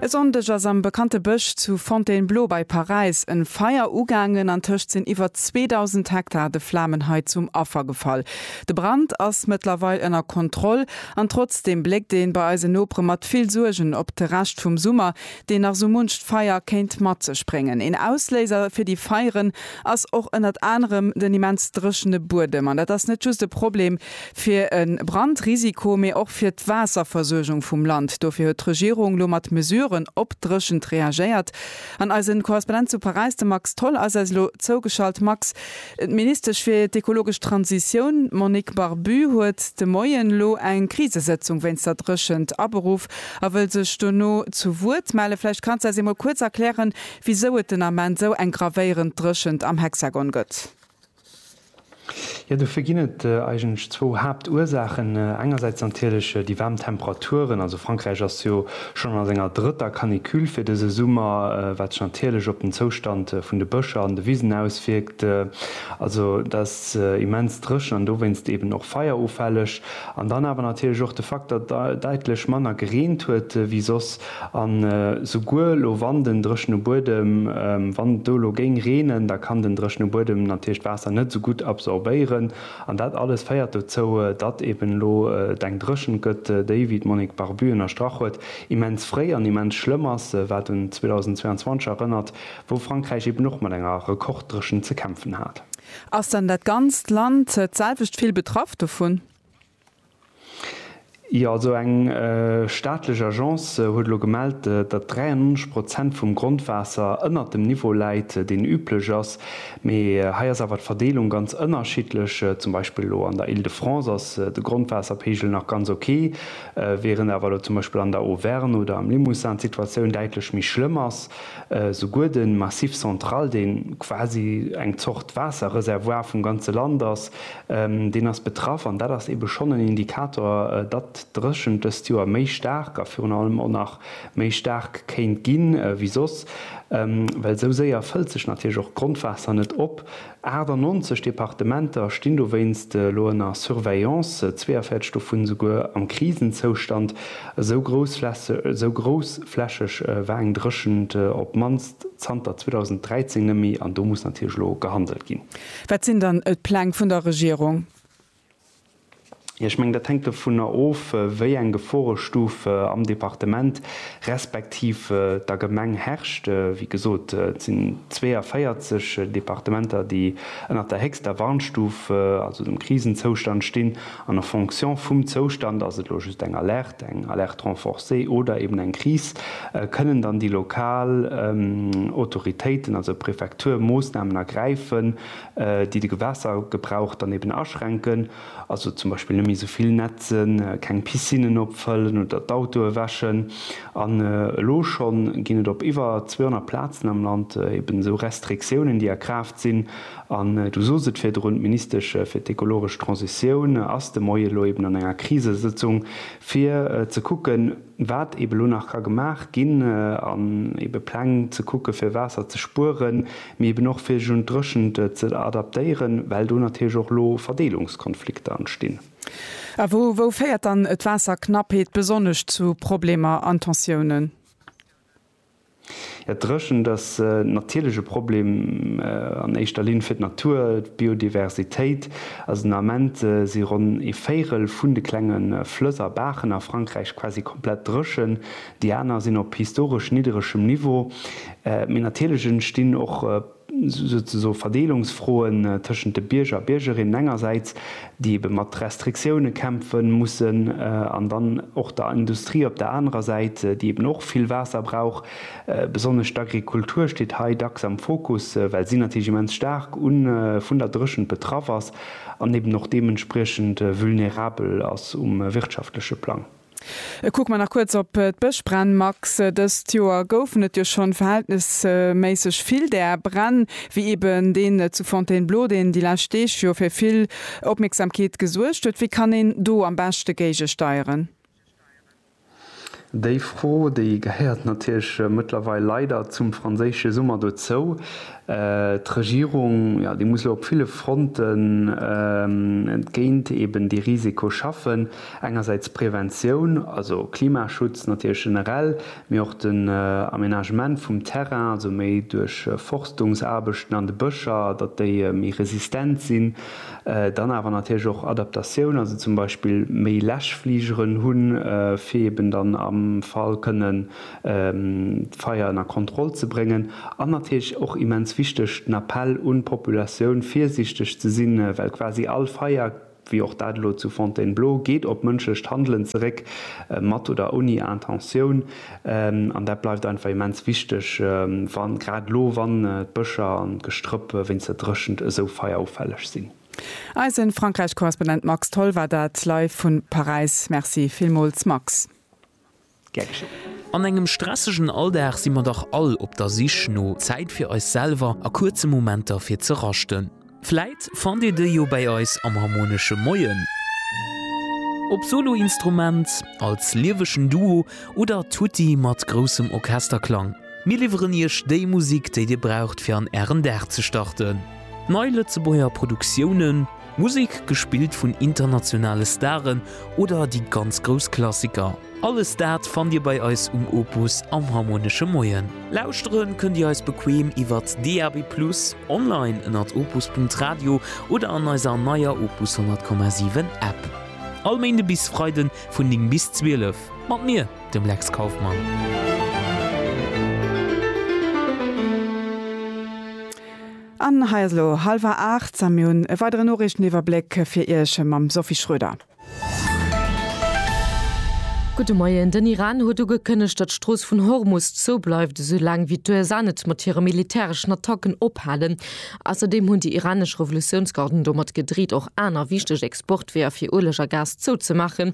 E Sonndeg ass am bekannte Bësch zu Fontainebleau bei Paräis en Feier ugaangen an tëscht sinn iwwer 2.000 Hektar de Flamen hei zum Affer gefall. De Brand ass mëttlerweil ënner Kontroll an trotzdeem bléckt een bei eisen Nopere mat vill Suergen op de Rescht vum Summer, deen nach sou muncht Feier kéint mat sech bréngen. Een Ausléiser fir déi Feieren ass och ënnert anerem den immens dréchene Buedem. An dat ass net just e Problem. fir e Brandrisiko, mee och fir d'Waasserversuergung vum Land. Dofir huet d'Regierung lo mat Mesuren op d'Dréchent reagéiert. An eisen Korrespondent zu Paräis, de Max Tholl, ass eis elo zougeschalt. Max, d'Ministesch fir d'ekologesch Transitioun, d'Monique Barbue, huet de Moien elo eng Krisesëtzung wéinst der Dréchent aberuff a wëll sech dono zu Wuert mellen. Vläicht kanns de eis eemol kuerz erklären, wisou et den Ament esou eng gravéierend Dréchent am Hexagon gëtt? Jo, dofir ginn et eigentlech zwou Haaptursaachen. Engersäits natierlech déi waarm Temperaturen. Also Frankräich ass jo schonn a senger drëtter Canicule fir dëse Summer, wat sech natierlech op den Zoustand vun de Bëscher an de Wisen auswierkt. Also dat ass immens dréchen an dowéinst eeben och feierufälleg. An dann awer natierlech och de Fakt, datt daitlech manner gereent huet wéi soss. An souguer elo, wann den dréchene Buedem, wann et do elo géing reenen, da kann den dréchene Buedem natierlech d'Waasser net esou gutt absorbéieren. An dat alles féiert dozou, datt eben elo et eng Dréchent gëtt, déi, wéi d'Monique Barbu ënnerstrach huet, immens fréi an immens schlëmm ass, wat un 2022 erënnert, wou Frankräich eben och mat enger Rekorddréchent ze kämpfen hat. Ass dann dat ganzt Land d'selwecht vill betraff dovun? Jo, also eng staatlech Agence huet elo gemellt, datt 93 Prozent vum Grondwaasser ënnert dem Niveau läit, deen üblech ass. Mee hei ass awer d'Verdeelung ganz ënnerschiddlech. Zum Beispill elo an der Île-de-France ass de Grondwaasserpeegel nach ganz ok, während awer elo zum Beispill an der Auvergne oder am Limousin d'Situatioun däitlech méi schlëmm ass. Souguer de Massif central, dee quasi eng Zort Waasserreservoir vum ganze Land ass, Deen ass betraff an dat ass eebe schonn en Indikator, datt d'Dréchent dëst Joer méi staark a virun allem och nach méi staark kéint gi wéi soss, well esou séier fëllt sech natierlech och d'Grondwaasser net op. 98 Departementer stinn dowéinst elo ënner Surveillance, 42 dovun esouguer am Krisenzoustand, esou groussflächeg war eng Dréchent op d'mannst zanter 2013 net méi an do muss natierlech elo gehandelt ginn. Wat sinn dann d'Pläng vun der Regierung? Jo, ech mengen, dat hänkt dovunner of, wéi eng Geforestuf am Departement respektiv der Gemeng herrscht. Wéi gesot, et sinn 42 Departementer, déi ënnert der héchster Warnstuf, also dem Krisenzoustand, stinn. An a fonction vum Zoustand, ass et elo just eng Alerte, eng Alerte renforcée oder eben eng Kris, kënnen dann déi lokal Autoritéiten, also d'Prefektur, Moossnamen ergräifen, déi de Gewässergebrauch dann eben aschränken, also zum Beispill net méi esou vill netzen, keng Piscinnen opfëllen oder d'Autoe wäschen. An elo schonn ginn et op iwwer 200 Plazen am Land eben esou Restriktiounen, déi a Kraaft. Sinn, an Du sos et virdrun, d'Ministesch fir d'ekologesch Transitioun ass de Moie elo eben an enger Krisesëtzung, fir ze kucken, wat eben elo nach ka gemaach ginn, an ebe Pläng ze kucken, fir Waasser ze spueren, mee eben och fir sech un d'Dréchent ze adaptéieren, well do natierlech och elo Verdeelungskonflikter entstinn. A wou, wou féiert dann d'Waasserknappheet besonnesch zu Problemer an Tensiounen? Ja, d'Dréchent ass natierlech e Problem an éischter Linn fir d'Natur, d'Biodiversitéit. Also den Ament si ronn ee Véirel vun de klenge Flëss a Baachen a Frankräich quasi komplett dréchen, déi aner sinn op historesch nidderegem Niveau. Mee natierlech entstinn och souzesoe Verdeelungsfroen tëschent de Bierger a Biergerinnen engersäits, déi ebe mat Restriktioune kämpfe mussen, an dann och der Industrie op der anerer Säit, déi eben och vill Waasser brauch. Besonnesch d'Agrikultur steet hei dacks am Fokus, well si natierlech immens staark vun der Dréchent betraff ass an eben och deementspriechend vulnerabel ass um wirtschaftleche Plang. E kucke mer nach kuerz op d'Bëschbränn. Max, dëst Joer goufen et jo schonn verhältnesméisseg vill där Bränn, wéi eben deen zu Fontainebleau, deen déi lescht Deeg jo fir vill Opmierksamkeet gesuergt huet. Wéi kann een do am beschte géigesteieren? Déi Fro, déi gehéiert natierlech mëttlerweil leider zum franséische Summer dozou. D'Regierung, jo, déi muss elo op ville Fronten géint eben dee Risiko schaffen. Engersäits d'Preventioun, also Klimaschutz natierlech generell, mee och den Aménagement vum Terrain, also méi duerch Forstungsaarbechten an de Bëscher, datt déi méi resistent sinn. Dann awer natierlech och Adaptatioun, also zum Beispill méi Läschfligeren hunn, fir eben dann am Fall kënnen d'Feier ënner Kontroll ze bréngen. An natierlech och immens wichteg den Appell un d'Populatioun, virsiichteg ze sinn, well quasi all Feier, wéi och dat elo zu Fontainebleau, geet op mënschlecht Handelen zeréck, mat oder ouni Intentioun. An dat bleift einfach immens wichteg, wa grad elo, wann d'Bëscher an d'Gestrëpp wéinst der Dréchent esou feierufälleg sinn. Eise Frankräich-Korrespondent Max Tholl war dat live vu Paräis. Merci villmools, Max. An engem stressegen Alldag si mer dach all op der Sich no Zäit fir eis selwer a kuerze Momenter fir ze raschten. Vläit fannt Dir déi jo bäi eis am Harmonesche Moien, ob Soloinstrument, als liewegen Duo oder tutti mat groussem Orchesterklang. Mir liwweren Iech déi Musik, déi Dir braucht fir an Ären Dag ze starten. Nei Lëtzebuerger Produktiounen. Musek gespillt vun internationale Staren oder déi ganz grouss Klassiker, alles dat fannt Dir bei eis um Opus am Harmonesche Moien. Lauschtere kënnt Dir eis bequeem iwwert DAB+, online ënnert opus.radio oder an eiser neier Opus 100,7 App. All Méinde bis Freide vun 9 bis 12 mat mir, dem Lex Kauffmann. An hei ass elo halwer 8 a mir hunn e weideren Noriichteniwwerbléck fir Iech mam Sophie Schroeder. Gudde Moien. Den Iran huet ugekënnegt, datt d'Strooss vun Hormus zou bleift, esou laang wéi d'USA net mat hire militäreschen Attacken ophalen. Ausserdeem hunn déi iranesch Revolutiounsgarden domat gedreet, och aner wichteg Exportweeër fir Ueleg a Gas zouzemaachen.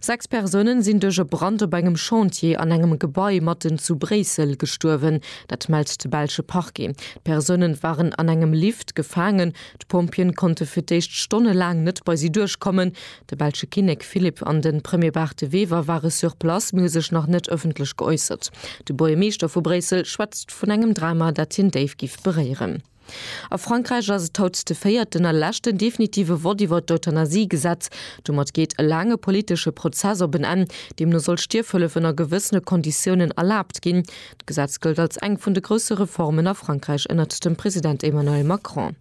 Sechs Persounen sinn duerch e Brand op engem Chantier an engem Gebai matten zu Bréissel gestuerwen. Dat mellt de belsche Parquet. D'Persounen waren an engem Lift gefaangen. D'Pompjeeën konnte fir d'éischt stonnelaang net bei si duerchkommen. De belsche Kinnek Philippe an de Premier Bart De Wever ware sur place, mee hu sech nach net ëffentlech geäussert. De Buergermeeschter vu Bréissel schwätzt vun engem Drama, dat hien déif géif beréieren. A Frankräich ass et haut de véierten a leschten definitive Vott iwwer d'Euthanasie-Gesetz. Domat geet e laange politesche Prozess op en Enn. Deemno soll Stierfhëllef ënner gewëssene Konditiounen erlaabt ginn. D'Gesetz gëllt als eng vun de grousse Reformen a Frankräich ënnert dem President Emmanuel Macron.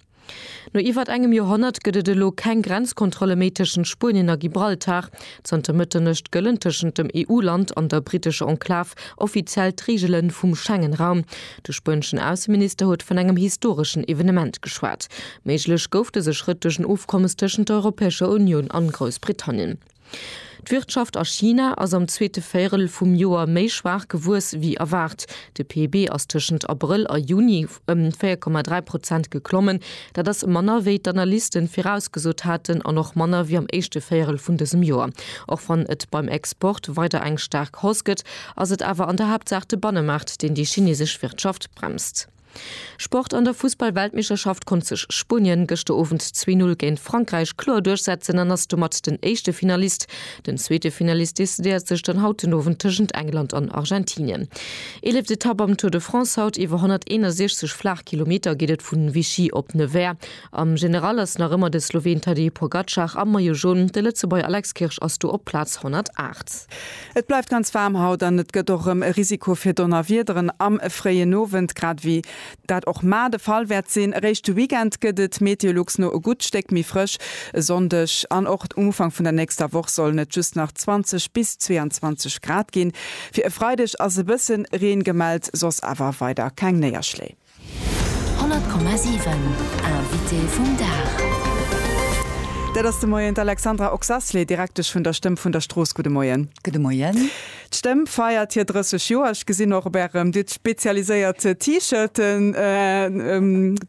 No iwwert engem Joerhonnert gëtt et elo keng Grenzkontrolle méi tëschent Spuenien a Gibraltar. Zanter Mëtternuecht gëllen tëschent dem EU-Land an der brittescher Enklav offiziell d'Reegele vum Schengen-Raum. De spueneschen Ausseminister huet vun engem historeschen Evenement geschwat. Méiglech gouf dëse Schrëtt duerch en Ofkommes tëschent der Europäescher Unioun an Groussbritannien. D'Wirtschaft a China ass am zweete Véierel vum Joer méi schwaach gewuess wéi erwaart. De PIB ass tëschent Abrëll a Juni. ëm 4,3 Prozent geklommen. Dat ass manner, wéi d'Analysten virausgesot haten an och manner wéi am éischte Véierel vun dësem Joer. Och wann et beim Export weider eng staark Hausse gëtt, ass et awer an der Haaptsaach de Bannemaart, deen déi chinesesch Wirtschaft bremst. Sport, An der Fussball-Weltmeeschterschaft konnt sech Spuenien gëschter Owend zwee Null géint Frankräich kloer duerchsetzen an ass domat den éischte Finalist Den zweete Finalist decidéiert sech dann haut den Owend tëschent England an Argentinien. Eeleft Etapp am Tour de France haut, iwwer 161 Flaachkilometer geet et vun Vichy op Nevers. Am General ass nach ëmmer de Sloween Tadej Pogacar am Maillot Jaune, de Lëtzebuerger Alex Kirsch ass do op Plaz 108. Et bleift ganz waarm haut an et gëtt och erëm e Risiko fir Donnerwiederen am fréien Owend, grad ewéi Dat och mar de Fall wäert sinn. Eréischt de Weekend gëtt et Meteolux no e gutt Stéck méi frësch e Sonndeg an och um Ufank vun der nächster Woch sollen et just nach 20 bis 22 Grad ginn. Fir e Freideg ass e bësse Reen gemellt, soss awer weider keng Néierschléi. 100,7 Invité vum Dag. Dat ass de Moien d'Alexandra Oxasley, Direktesch vun der Stëmm vun der Strooss. Gudde Moien. Gudde Moien. D'Stëmm feiert hir 30 Joer. Ech gesinn och op ärem, dir hutt spezialiséiert T-Shirten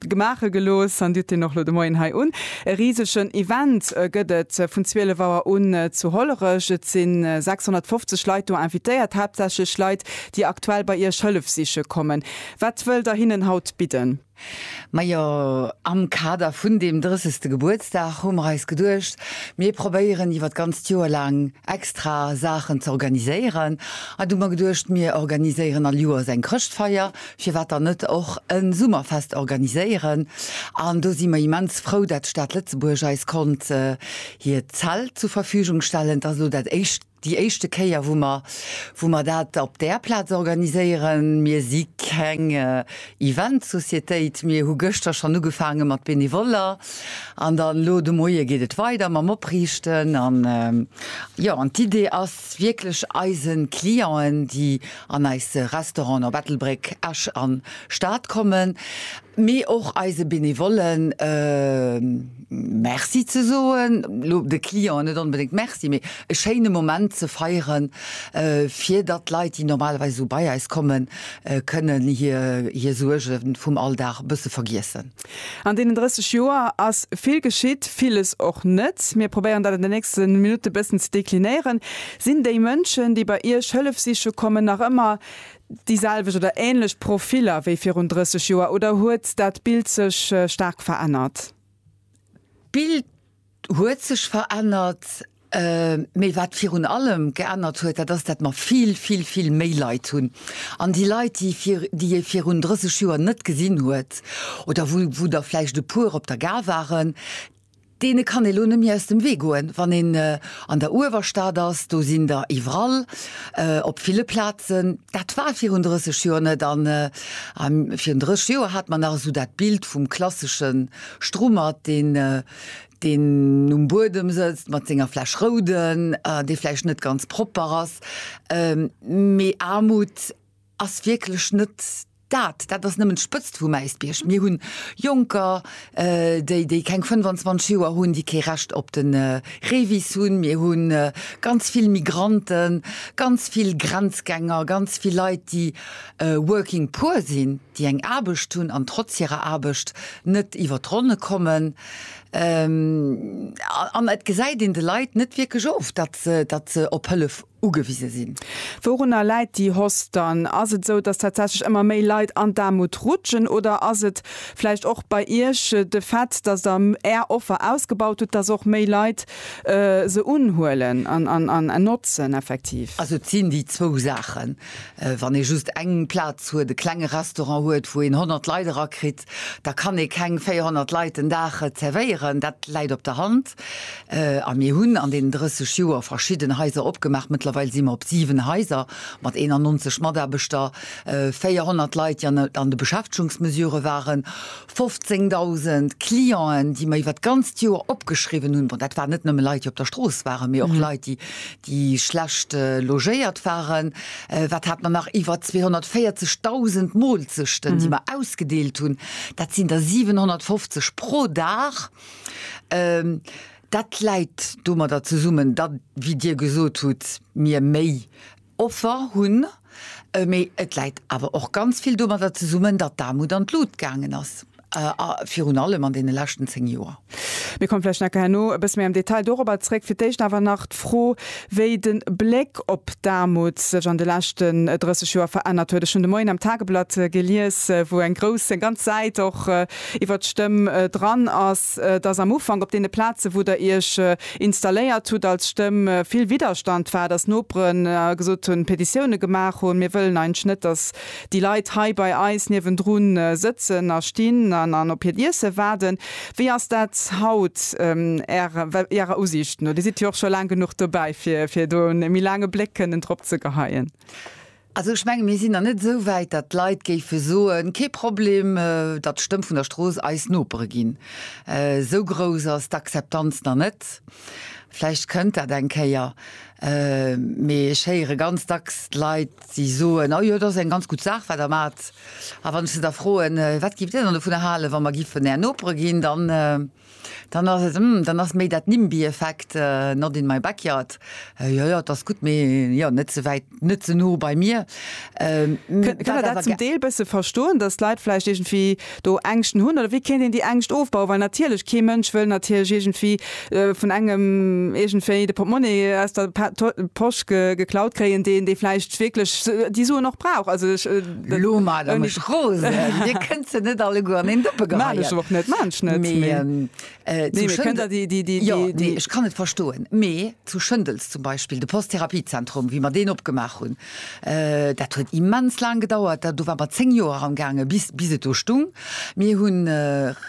gemaache gelooss an dir hutt deen och elo de Moien hei un. E risegen Event gëtt et vun 12 Auer un zu Hollerech. Et si 650 Leit do invitéiert, haaptsächlech Leit, déi aktuell bei iech Hëllef siche kommen. Wat wëllt der hinnen haut bidden? Majo, am Kader vun deem 30. Gebuertsdag hu mer eis geduecht, mir probéieren iwwer d'ganzt Joer laang extra Saachen ze organiséieren. An du mer geduecht, mir organiséieren all Joers eng Chrëschtfeier, firwat dann net och e Summerfest organiséieren? An do si mer immens frou, dat d'Stad Lëtzebuerg eis konnt hiert Zelt zur Verfügung stellen. Dat ass elo dat éischt. Déi éischte Kéier, wou mer, wou mer dat op där Plaz organiséieren. Mir si keng Event-Societéit. Mir hu gëschter schonn ugefaange mat Benevoller an dann elo de Moie geet et weider mam Opriichten. An, jo, an d'Idee ass wierklech eise Clienten, déi an eis Restauranten op Ettelbréck, Esch an Stad kommen, mee och eise Benevollen, Merci ze soen, elo de Clienten net onbedéngt Merci, mee e schéine Moment ze feiere fir datt d'Leit, déi normalerweis esou bei eis kommen, kënnen hir hir Suerge vum Alldag e bësse vergiessen. An deenen 30 Joer ass vill geschitt, villes och net. Mir probéieren dat an den nächste Minutte bëssen ze deklinéieren. Sinn déi Mënschen, déi bei Iech Hëllef siche kommen, nach ëmmer déi selwecht oder ähnlech Profiller wéi virun 30 Joer oder huet dat Bild sech staark verännert? D'Bild huet sech verännert, mee wat virun allem geännert huet, dat ass, dat mer vill, vill, vill méi Leit hunn. An déi Leit, déi vir, déi ee virun 30 Joer net gesinn huet oder wou, wou der vläicht e puer op der Gare waren, Deene kann ee lo net méi aus dem Wee goen. Wann een an der Uewerstad ass, do sinn der iwwerall, op ville Plazen. Dat war virun 30 Joer net. A virun 30 Joer hat mer nach esou dat Bild vum klassesche Strummert, deen, deen um Buedem sëtzt mat senger Fläsch Rouden, dee vläicht net ganz propper ass, mee Aarmut. Ass wierklech net dat. Dat ass nëmmen d'Spëtzt vum Äisbierg. Mir hunn Jonker, déi, déi keng 25 Joer hunn, déi kee Recht op de Revis hunn. Mir hu ganz vill Migranten, ganz vill Grenzgänger, ganz vill Leit, déi working poor sinn, déi eng Aarbecht hunn an trotz hirer Aarbecht net iwwer d'Ronne kommen. An et gesäit een de Leit net wierklech of, datt se, datt se op Hëllef ugewise sinn. Wourunner läit déi Hoss dann? Ass et esou, dass tatsächlech ëmmer méi Leit an d'Aarmut rutschen oder ass et vläicht och bei Iech de Fait, dass Der Är Offer ausgebaut hutt, dass och méi Leit se unhuelen an notzen effektiv? Also et sinn déi zwou Saachen. Wann ee just eng Plaz huet, e klenge Restaurant huet, wou een 100 Leit erakritt, da kann ee keng 400 Leit den Dag zervéieren. Dat läit op der Hand. A mir hunn an deenen 30 Joer verschidden Haiser opgemaach. Mëttlerweil si mer op 7 Haiser mat 91 Mataarbechter, 400 Leit, déi an de Beschäftegungsmesure waren, 15.000 Clienten, déi mer iwwert d'ganzt Joer opgeschriwwen hunn. Bon, dat waren net nëmme Leit, déi op der Strooss waren, mee och Leit, déi schlecht logéiert waren. Wat hat mer nach? Iwwer 240.000 Moolzechten, déi mer ausgedeelt hunn. Dat sinn der 750 pro Dag. Dat läit domadder zesummen, datt, wéi Dir gesot hutt, mir méi Offer hunn. Mee et läit awer och ganz vill domadder zesummen, datt d'Aarmut an d'Lut gaangen ass, a virun allem an deene leschten zéng Joer. Mir komme vläicht nachher herno e bësse méi am Detail dorobber zréck. Fir d'éischt awer nach d'Fro, wéi de Bléck op d'Aarmut sech an de leschten 30 Joer verännert huet. Ech hunn de Moien am Tageblatt gelies, wou eng grouss, eng ganz Säit och iwwert d'Stëmm dran ass, dass am Ufank op deene Plazen, wou Der Iech installéiert hutt als Stëmm, vill Widderstand war, dass Noperen gesot hunn, Petitioune gemaach hunn, Mir wëllen eigentlech net, dass déi Leit hei bei eis niewendru sëtzen a stinn an op hiert Iesse waarden. Wéi ass dat haut Ärer Usiicht no? Dir sidd jo och scho laang genuch dobäi, fir do e méi laange Bléck kënnen drop ze geheien. Also ech menge mir sinn nach net esou wäit, datt d'Leit géife soen, kee Problem, datt d'Stëmm vun der Strooss eis Nopere ginn. Esou grouss ass d'Akzeptanz nach net. Vläicht kënnt dat eng Kéier. Mee ech héiere ganz dacks d'Leit, déi soen, oh jo, dat ass eng ganz gutt Saach, wat Der maacht. A wann ech se da froen, wat gift Dir dann dovunner halen, wa mer giffen Är Nopere ginn, dann. Dann ass et, mm, dann ass méi dat Nimby-Effekt, not in my backyard, jo, jo, et ass gutt, mee jo, net ze wäit, net ze no bei mir. Kënnt een dat zum Deel bësse verstoen, datt d'Leit vläicht iergendwéi do Ängschten hunn? Oder wéi kéint een déi Ängscht ofbauen? Well natierlech, kee Mënsch wëll natierlech iergendwéi vun engem iergendwéi de Portmonni aus der Posch geklaut kréien, deen dee vläicht wierklech déi Suen och brauch. Also ech. Lo ma der mech rosen, dir kënnt se net alleguer an een Dëppe geheien. Maan ech och net, maan ech net, mee. Mee zu Schëndel, jo, nee, ech kann et verstoen, mee zu Schëndels zum Beispill, de Post-Therapiezentrum, wéi mer deen opgemaach hunn, dat huet immens laang gedauert, do ware mer 10 Joer eran gaangen, bis, bis et do stung. Mir hu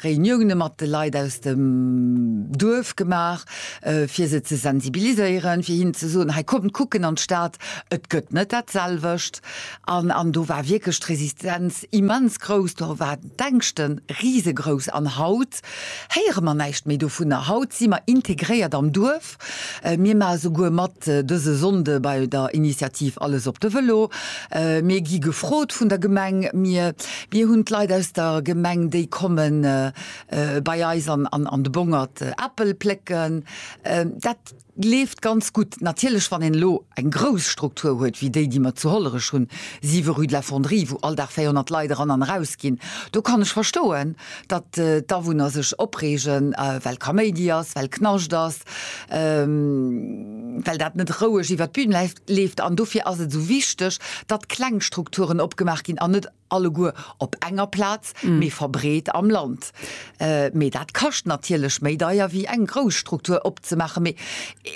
Reunioune mat de Leit aus dem Duerf gemaach, fir se ze sensibiliséieren, fir hinnen ze soen, hei kommt kucken an d'Stad, et gëtt net dat selwecht. An do war wierklech d'Resistenz immens grouss, do war d'Ängschte risegrouss. An haut héiere mer näischt méi dovunner. Haut si mer integréiert am Duerf, mir maache souguer mat dëse Sonnde bei der Initiativ Alles op de Vëlo, mir gi gefrot vun der Gemeng, mir hunn d'Leit aus der Gemeng, déi komme bei eis an de Bongert Äppel plécken. Dat. Leeft ganz gutt. Natierlech, wann een elo eng grouss Struktur huet wéi déi, déi mer zu Hollerech hunn, 7 rue de la Fonderie, wou all Dag 400 Leit eran an eraus ginn, do kann ech verstoen, datt d'Awunner sech opreegen, well Kaméidi ass, well Knascht ass, well dat net roueg iwwert d'Bün leeft. An dofir ass et esou wichteg, datt kleng Strukturen opgemaach ginn an net, alleguer op enger Plaz, mee verbreet am Land. Mee dat kascht natierlech méi deier wéi eng grouss Struktur opzemaachen. Mee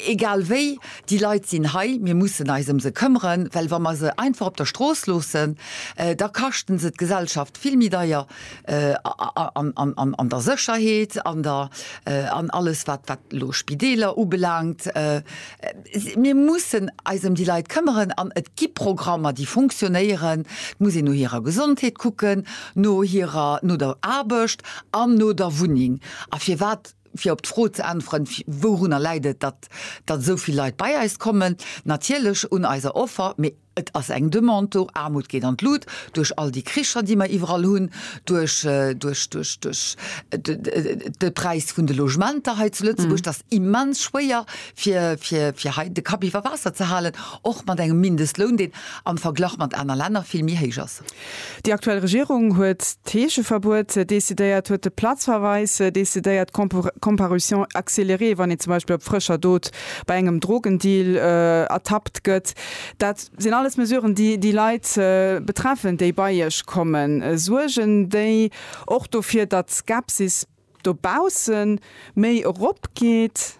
egal wéi, déi Leit sinn hei, mir mussen eis ëm se këmmeren, well wa mer se einfach op der Strooss loossen, da kaschten se d'Gesellschaft vill méi deier an der Sécherheet, an alles wat elo Spideeler ubelaangt. Mir mussen eis ëm déi Leit këmmeren an et gi Programmer, déi funktionéieren. Et muss een no hirer Gesondheet kucken, no hirer, no der Aarbecht an no der Wunneng. A firwat, fir op d'Fro ze äntweren, wourunner läit et, datt esou vill Leit bei eis kommen? Natierlech un eiser Offer, mee Et ass eng Demande do. Aarmut geet an d'Lut duerch all déi Kricher, déi mer iwwerall hunn, duerch de Präis vun de Logementer hei zu Lëtzebuerg. Et ass immens schwéier, fir hei de Kapp iwwer Waasser ze halen, och mat engem Mindestloun, deen am Verglach mat aner Länner vill méi héich ass. Déi aktuell Regierung huet d'Heescheverbuet decidéiert, huet de Platzverweis decidéiert, d'Comparution accélérée, wann een zum Beispill op frëscher Dot bei engem Drogendeal ertappt gëtt. Dat sinn alles Mesuren, déi déi Leit betreffen, déi bei Iech kommen. Suergen déi och dofir, datt d'Skepsis dobausse méi eropgeet?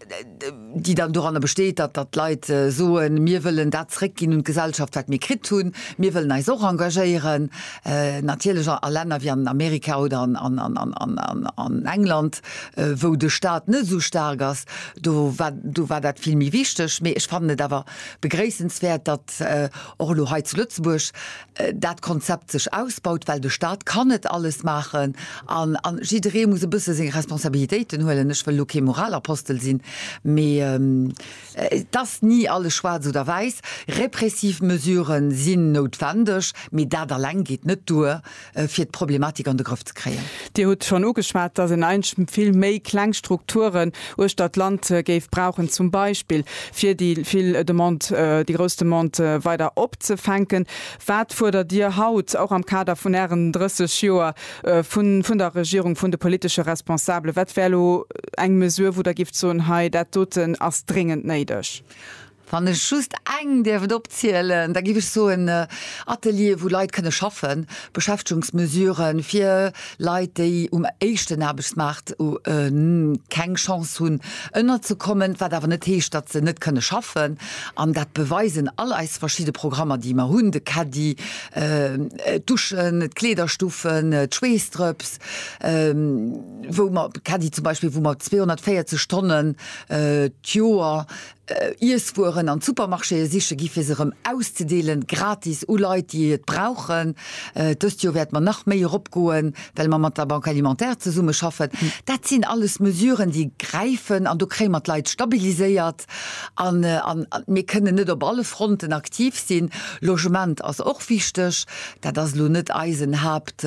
déi dann doranner besteet, datt, datt d'Leit soen, mir wëllen dat zrëckginn un d'Gesellschaft, wat mir kritt hunn, mir wëllen eis och engagéieren, natierlech a Länner wéi an Amerika oder an England, wou de Stat net esou staark ass, do war, do war dat vill méi wichteg. Mee ech fannen et awer begréissenswäert, datt och elo hei zu Lëtzebuerg dat Konzept sech ausbaut, well de Staat kann net alles maachen an jidderee muss e bësse seng Responsabilitéiten huelen. Ech wëll elo kee Moralapostel sinn, mee et ass ni alles schwaarz oder wäiss. Repressiv Mesuren sinn noutwendeg, mee dat eleng geet net duer, fir d'Problematik an de Grëff ze kréien. ze kréien. Dir hutt schonn ugeschwat, dass een eigentlech vill méi kleng Strukturen uechter d'Land géif brauchen, zum Beispill fir déi vill Demande, déi grouss Demande weider opzefänken. Wat fuerdert Dir haut, och am Kader vun Ären 30 Joer, vun der Regierung, vun de politesche Responsabelen? Wat wär elo eng Mesure, wou Der gift soen, hei dat doten ass dréngend néideg? Wann ech just eng däerf et opzielen, da giff ech soen, Ateliere wou Leit kënne schaffen, Beschäftegungsmesure fir Leit déi um éischten Aarbechtsmaart keng Chance hunn ënnerzekommen, wat awer net heescht, datt se net kënne schaffen. An dat beweisen all eis verschidde Programmer déi mer hunn, de Caddy, d'Duschen, d'Kleederstuffen, d'Schweessdrëps, wou mer, Caddy zum Beispill, wou mer 240 Stonnen d'Joer Iesswueren an d'Supermarchéë siche gi fir se erëm auszedeelen, gratis u Leit, déi et brauchen. Dëst Joer wäerte mer nach méi eropgoen, well mer mat der Banque alimentaire zesummeschaffen. Dat sinn alles Mesuren, déi gräifen an do kréie mer d'Leit stabiliséiert. An mir kënnen net op alle Fronten aktiv sinn. Logement ass och wichteg. Dat ass elo net eisen Haapt.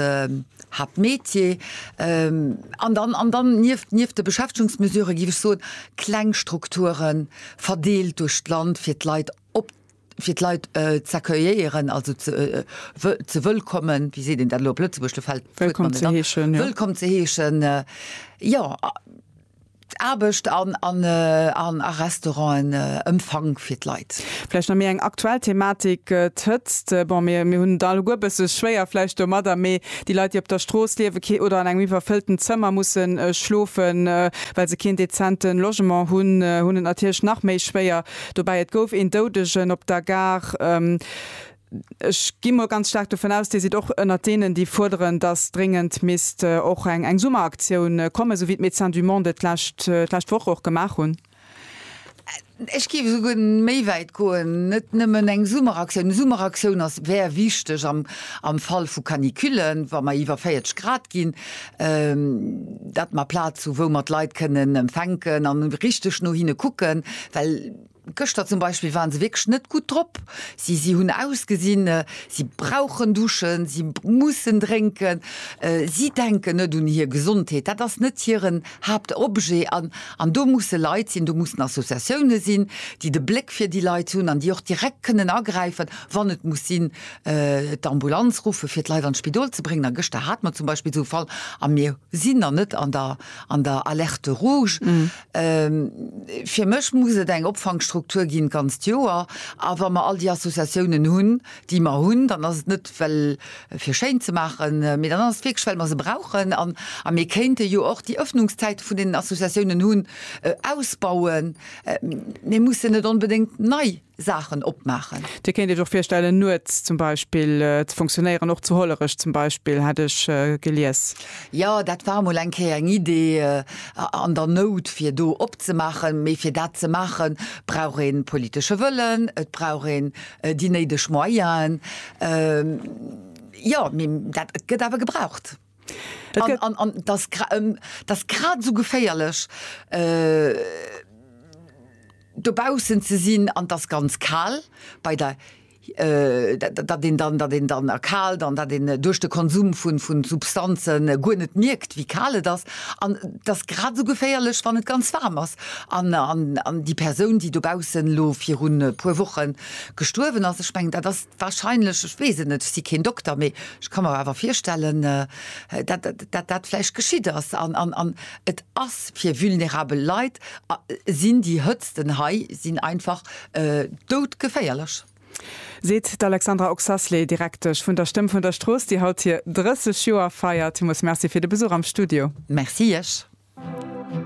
Habt Metier an dann an dann nieft nieft de Beschäftigungsmesurë géif ech soen, kleng Strukture verdeelt duerch d'Land, fir d'Leit op fir d'Leit z'accueillieren, also ze ze wëllkommen. Wéi seet een dat elo op Lëtzebuerg? Do fält d'Wuert mer net an. Wëllkomm ze heeschen. Wëllkomm ze heeschen, jo. Aarbecht an a Restauranten Empfang fir d'Leit. Vläicht nach méi eng aktuell Thematik, d'Hëtzt. Bon, mir hunn et alleguer e bësse schwéier vläicht domadder, mee déi Leit, déi op der Strooss liewe kee oder an engem iwwerfëllten Zëmmer musse schlofen, well se keen dezente Logement hunn, hunn et natierlech nach méi schwéier dobäi. Et gouf een Doudegen op der Gare. Ech gi mol ganz staark dovun aus, Dir sidd och ënnert deenen, déi fuerderen, dass dréngend misst och eng Summeraktioun kommen, esou wéi d'Médecins du Monde et d'lescht d'lescht Woch och gemaach hunn. Ech géif esouguer méi wäit goen, net nëmmen eng Summeraktioun. Eng Summeraktioun ass, wär wichteg am, am Fall vu Canicullen, wa mer iwwer 40 Grad ginn, dat mer Plaz hu wou mer d'Leit kënnen empfänken an richteg no hinne kucken, well, Gëschter zum Beispill waren se wierklech net gutt drop. Si si hunn ausgesinn, si brauchen duschen, si mussen drénken, si denken net un hir Gesondheet, dat ass net hiren Haaptobjet. An an do musse Leit sinn, do mussen Associatioune sinn, déi de Bléck fir déi Leit hunn an déi och direkt kënnen agräifen, wann et muss sinn, d'Ambulanz ruffe fir d'Leit an d'Spidol ze bréngen. A gëschter hate mer zum Beispill esou e Fall a mir sinn nach net an der an der Alerte rouge. Fir mech muss et eng Opfangstruktur ginn d'ganzt Joer. A wa mer all déi Associatiounen hunn, déi mer hunn, dann ass et net, well fir schéin ze maachen, mee dann ass et wierklech, well mer se brauchen. A mir kéinte jo och déi Öffnungszäite vun deenen Associatiounen hunn ausbauen. Mir mussen net onbedéngt nei Saachen opmaachen. Dir kéint Iech och virstellen, nuets zum Beispill ze funktionéieren, och zu Hollerech zum Beispill, hat ech gelies. Jo, dat war emol eng Kéier eng Idee an der Nout, fir do opzemaachen. Mee fir dat ze maachen, brauch ee politesche Wëllen, et brauch een déi néideg Moyenen. Jo, mee dat gëtt awer gebraucht. An dat ass grad esou geféierlech, dobaussen ze sinn an et ass ganz kal, datt een dann erkaalt an datt een duerch de Konsum vu Substanze guer net mierkt, wéi kal et ass. An et ass grad esou geféierlech, wann et ganz waarm ass. An déi Persoun, déi dobaussen elo virun e puer Woche gestuerwen ass, ech mengen, dat ass Wahrscheinlech, ech weess et net, ech si keen Dokter, mee ech ka mer awer virstellen, datt dat vläicht geschitt ass. An et ass fir vulnerabel Leit, sinn déi Hëtzten hei sinn einfach doudgeféierlech. Seet d'Alexandra Oxasley, Direktesch vun der Stëmm vun der Strooss, déi haut hir 30 Joer feiert. Villmools Merci fir de Besuch am Studio. Merci iech.